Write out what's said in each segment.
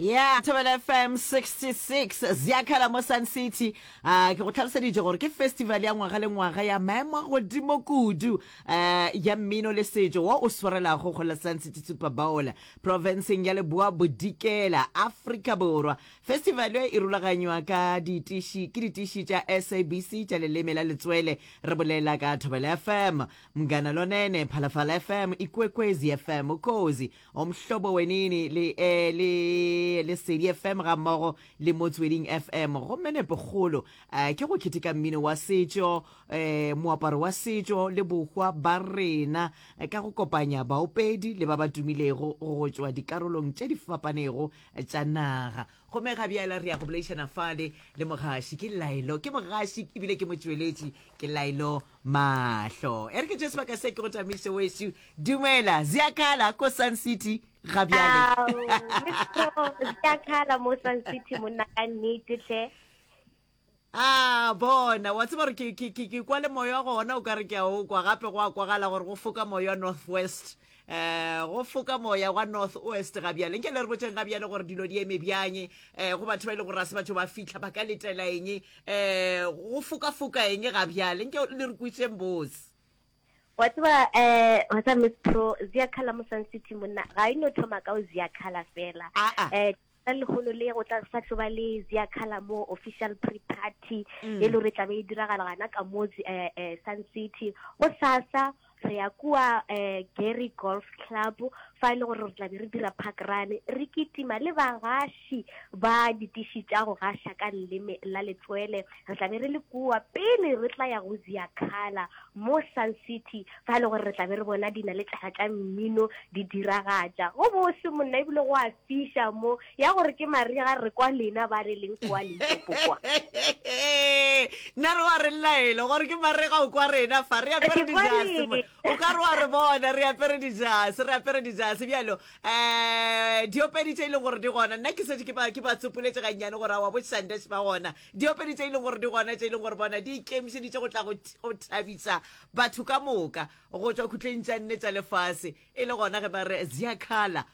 Yeah, Thobela FM 66 Ziakhala mo Sun City. Uh, ke go tlhaloseditše gore ke festival ya ngwaga le ngwaga ya maemo a godimo kudu uh, ya mmino le setšo wa o swarelago go la Sun City Super Bowl provinceng ya Leboa Bodikela, Afrika Borwa. Festival e e rulaganywa ka ditiši ke ditiši tša SABC tša leleme la letswele re bolela ka Thobela FM. Mngana Lonene, Phalafala FM, Ikwekwezi FM, Ukhozi, Omhlobo Wenini le, eh, le Lesedi FM ga mmogo le Motsweding FM. Gomme nepokgolo eh, ke go keteka mmino wa setšo, eh, moaparo wa setšo le bohwa ba rena eh, ka go kopanya baopedi le ba ba tumilego go tšwa dikarolong tše di fapanego tša naga. Gomme ga bjala re ya go boledišana fale le mogaši. Ke Laelo, ke mogaši ebile ke motšweletši, ke Laelo Mahlo. E re ke tše sebaka se ke go tamiso weso. Dumela, Ziakala ko Sun City ga bjale. Ziakala mo Sun City monna ka nnete hle. Ah, bona, wa tseba gore ke kwa le moya gona o ka re ke a o kwa gape go a kwagala gore go foka moya northwest. um go foka moya wa north west ga bjale nke le re botseng ga bjale gore dilo di eme bjang um go batho ba e le gore a se batho ba fitlha ba ka letela eng um go foka-foka eng ga bjale nke le re kwitseng bose wa tseba um wa tseba miss pro ziakhala mo sun city monna ga e no thoma ka o ziakhala fela um Ka lehono le go tla sa tlo ba le Zia Color mo official pre-party mm. e le gore tlabe e diragala gana ka mo eh, eh, Sun City go sasa re ya kua eh, Gary Golf Club fa e le gore re tla be re dira park run re kitima le bagaši ba ditiši tša go gaša ka leleme la letswele re tla be re le kua pele re tla ya go zia khala mo sun city fa e le gore re tla be re bona dina le tšhala tša mmino di diragatša go bose monna ebile go a Fiša mo, ya gore ke marega re kwa lena ba re leng kwa Limpopo kwa. Nna re wa re laela gore ke marega o kwa rena fa re apere dijase mo. O ka re wa re bona re apere dijase, re apere dijase bjalo. Eh, diopedi tše e leng gore di gona. Nna ke setse ke ba ke ba tsopoletse gannyane gore a wa bo Shandesh ba gona. Diopedi tše e leng gore di gona tše e leng gore bona di ikemišeditše go tla go th- go thabisa batho ka moka go tšwa khutleng tša nne tša lefase e le gona ge ba re Ziakhala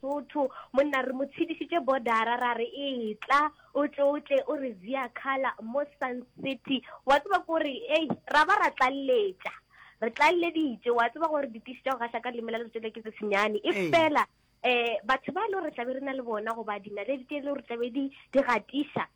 Sotho, monna re mo tshedišitše bodara ra re etla o tle o tle o re via khala mo sun city wa tseba ko re ei ra ba ra tlalletša re tlalleditše wa tseba gore ditiši tša go gahla ka leme la letsoto le ke tse senyane e Ee. fela um batho ba e le gore re tlabe re na le bona goba dinaledi tše e le gore tlabe di di gatiša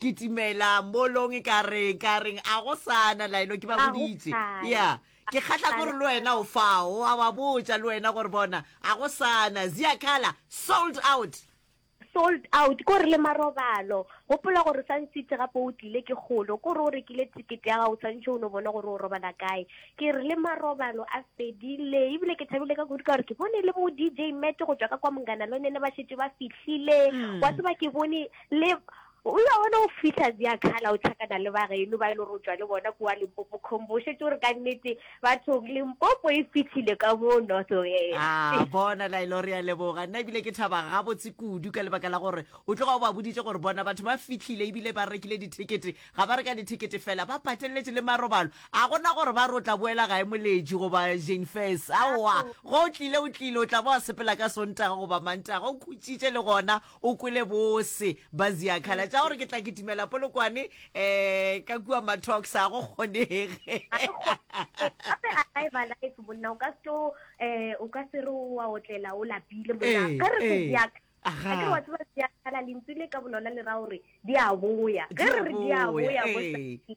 kitimela molong e ka reng ka reng a go sana laeno ke ba Ga go boditse sana. ya ke kgatla Ga go gore le wena o fao a wa botsa le wena gore bona a go sana ziakhala sold out sold out ko re le marobalo gopola gore o sa ntsitse gape o tlile ke kgolo ko re o rekile ticket ya gago o tshwanetse o no bone gore o robala kae ke re le marobalo a fedile ebile ke thabile ka kudu ka gore ke bone le bo dj mete go tswa ka kwa mongana lone ne ba šetse ba fihlile wa tseba ke bone Le Ewa wena o fihla zia khala o tlhakana le ba geno ba e le gore o tšwa le bona kua limpopo khombo o šetse gore ka nnete bathong limpopo e fihlile ka mo north west a bona la e le gore ya leboga nna ebile ke thaba gabotse kudu ka lebaka la gore o tloga o ba boditše gore bona batho ba fihlile ebile ba rekile dithekete ga ba reka dithekete fela ba pateletse le marobalo a gona gore ba re o tla boela gae moletši goba jane fes aowa go o tlile o tlile o tla ba wa sepela ka sontaga goba mantaga o khutšitše le gona O kwele bose ba Ziakhala tša gore ke tla kitimela Polokwane um ka kua Matox ga go kgonege. Gape alive alive monna o ka se tlo um o ka se re wa otlela o lapile monna Eh, ka re se eh. Ziakhala Aha. a ke re wa tseba Ziakhala lentswe le ka bolona le ra gore di a boya ge Di a re re di a boya, boya eh. bosaki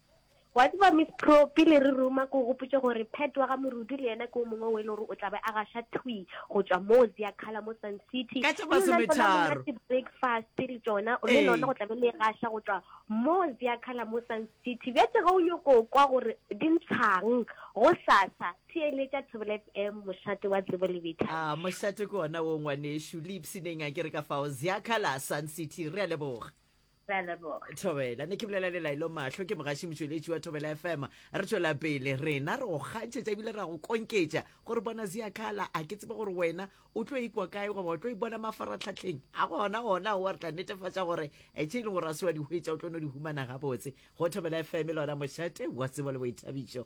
Wa tseba Miss Pro, pele re ruma ke o gopotše gore Pat wa ga Morudu le yena ke o mongwe o e le gore o tla be a gaša thwi go tšwa mo Ziakhala mo Sun City. Ka tša Mme lona masometharo. tsona monate breakfast le tšona le Ee. lona go tla be le e gaša go tšwa mo Ziakhala mo Sun City. Bjatše ge o nyoko kwa gore di ntshang go sasa theeletša Thobela FM mošate wa tsebo le betha. Ah, mošate ke ona wo ngwanešu. Le ipshineng a ke re ka fao. Ziakhala, Sun City. Re a leboga. thobela ne ke bolela le laelo mahlo ke mogaši motšweletši wa thobela fm re tšwela pele rena re go kgantšhetša ebile ra go konketša gore bona ziakhala a ke tsebe gore wena o tlo ikwa kae goba o tlo ipona mafaratlhatlheng a gona gona oa re tla netefatša gore e tše e leng gore a se wa di hwetša o tlo no di humana gabotse go thobela fm e lona mošate wa tsebo le boithabišo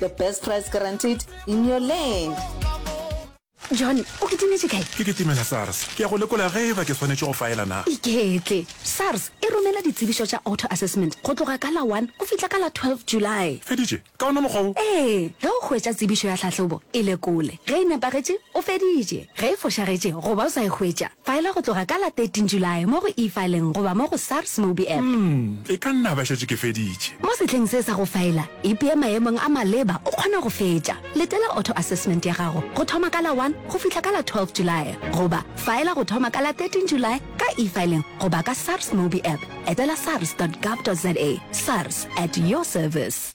The best price guaranteed in your land. John, o kitimetše kae? Ke kitimela SARS. Ke ya go lekola ge eba ke swanetše go faela na. Iketle. SARS e romela ditsebišo tša auto assessment go tloga ka la one go fihla ka la twelve July. Feditše? Ka ona mokgwa wo? Ee, ge o hwetša tsebišo ya tlhahlobo, e lekole. Ge e nepagetše, o feditše. Ge e fošagetše goba o sa e hwetša, Faela go tloga ka la 13 Julae mo go e-fileng goba mo go SARS Mobi App. Umm, e ka nna ba šetše ke feditše. Mo sehleng se sa go faela, ipee maemong a maleba o kgona go fetša. Letela auto assessment ya gago go thoma ka la 1 go fihla ka la 12 Julae goba faela go thoma ka la 13 Julae ka e-fileng goba ka SARS Mobi App. Etela sars dot gov dot za. SARS, at your service.